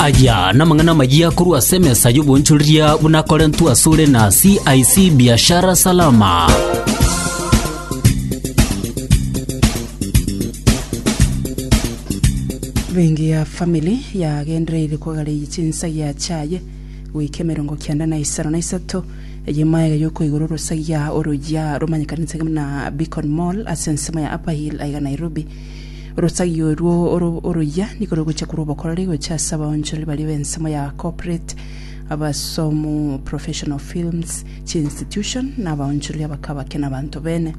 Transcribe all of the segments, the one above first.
Aya namang'ana amayia korwa ase emesa y'obonchoreria buna akorentwe asore na CIC Biashara Salama. Bengi ya family yagendereire kogareyia chinsagia chiaye goika emerongo kianda na isano na isato eye maega yokoigora orosagia oroyia romanyekanete na Beacon Mall ase ensemo ya Upper Hill aiga Nairobi. Orosagi orwo oroyia nigo rogocha korwa obokoreri gocha ase abaonchoreri baria b'ensemo ya corporate, abasomu, professional films, chiinstitution, na abaonchoreri abake abake na abanto bene.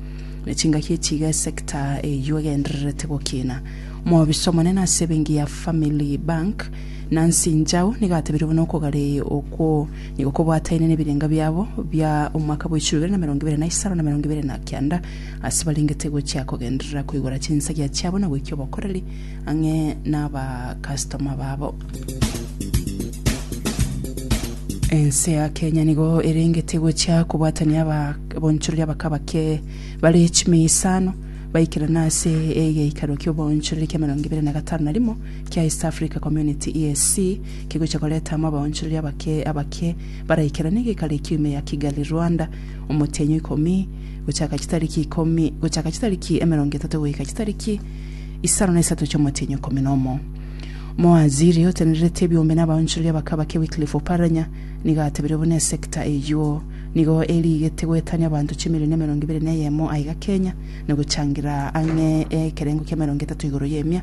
Na chingaki echi iga esector eyio egendererete gokina. Omobisa omonene ase ebenki ya Family Bank, Nancy Njau, nigo atebirie buna okogare okwo nigo kobwataine nebirenga biabo bia omwaka bwa echiru ibere na emerongo ibere na isano na emerongo ibere na kianda, Ase barengete gochia kogenderera koigora chinsagia chiabo na goikia obokoreri ang'e nabakastoma babo. Ense ya Kenya nigo erengete gochia kobwatania abonchorori abaka bake bare chimia isano baikerane ase egeikaro kia obonchorori kia emerongo ebere na gatano na rimo kia East Africa Community EAC kegochia koreta amo abonchorori abake abake baraikerane egeikaro ekio ime ya Kigali Rwanda omotenyo ikomi gochaka chitariki ikomi gochaka chitariki emerongo etato goika chitariki isano na isato chi'omotienyi ikomi na omo. Moaziri otenererete ebiombe n'abaonchoreria bakabake Wycliffe Oparanya nigo atebirie buna esekta eyio nigo eriigete goetania abanto chimilioni emerongo ebere na eyemo aiga Kenya na gochangira ang'e ekerengo ki'emerongo etato igoro y'emia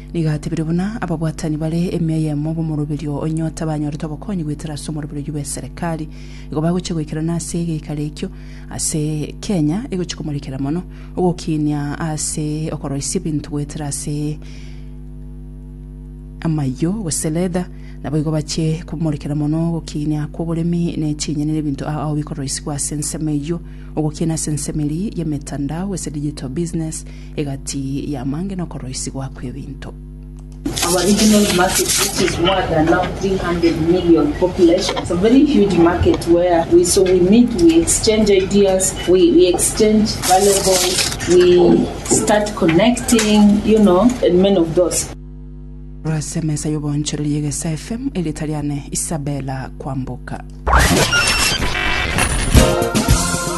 Nigo atebire buna ababwatani bare emia eyemo b'omoroberio o Nyota banyorete obokonyi goetera ase omorobererio bw'eserekari. Igo bagochia goikerana ase egeikaro ekio ase Kenya egochia komorekera mono ogokinia ase okoroisia ebinto goetera ase amayio gose leather. Naboigo bachie komorekera mono ogokinia kw'oboremi ne chinyeni ne ebinto ao bikoroisigwa ase ensemo eyio. Ogokinia ase ensemo eria y'emetandao gose digital business Egati y'amaange nokoroisigwa kw'ebinto. Ase emesa y'oboonchoreria egesa FM, erieta riane Isabella Kwamboka.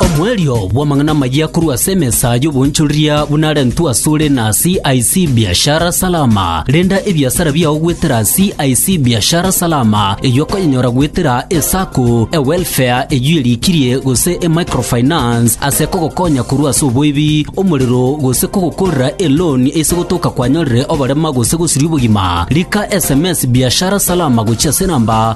Omoerio bw'amang'ana amayia korwa ase emesa y'oboonchoreria buna arentwe asore na CIC Biashara Salama. Renda ebiasara biao goetera CIC Biashara Salama, eyio okonyenyora goetera eSacco, eWelfare eyio erikirie gose eMicrofinance ase kogokonya korwa ase oboibi, omorero gose kogokorera eloan ase gotoka kwanyorire oborema gose gosiria obogima. Rika sms Biashara Salama gochia ase enamba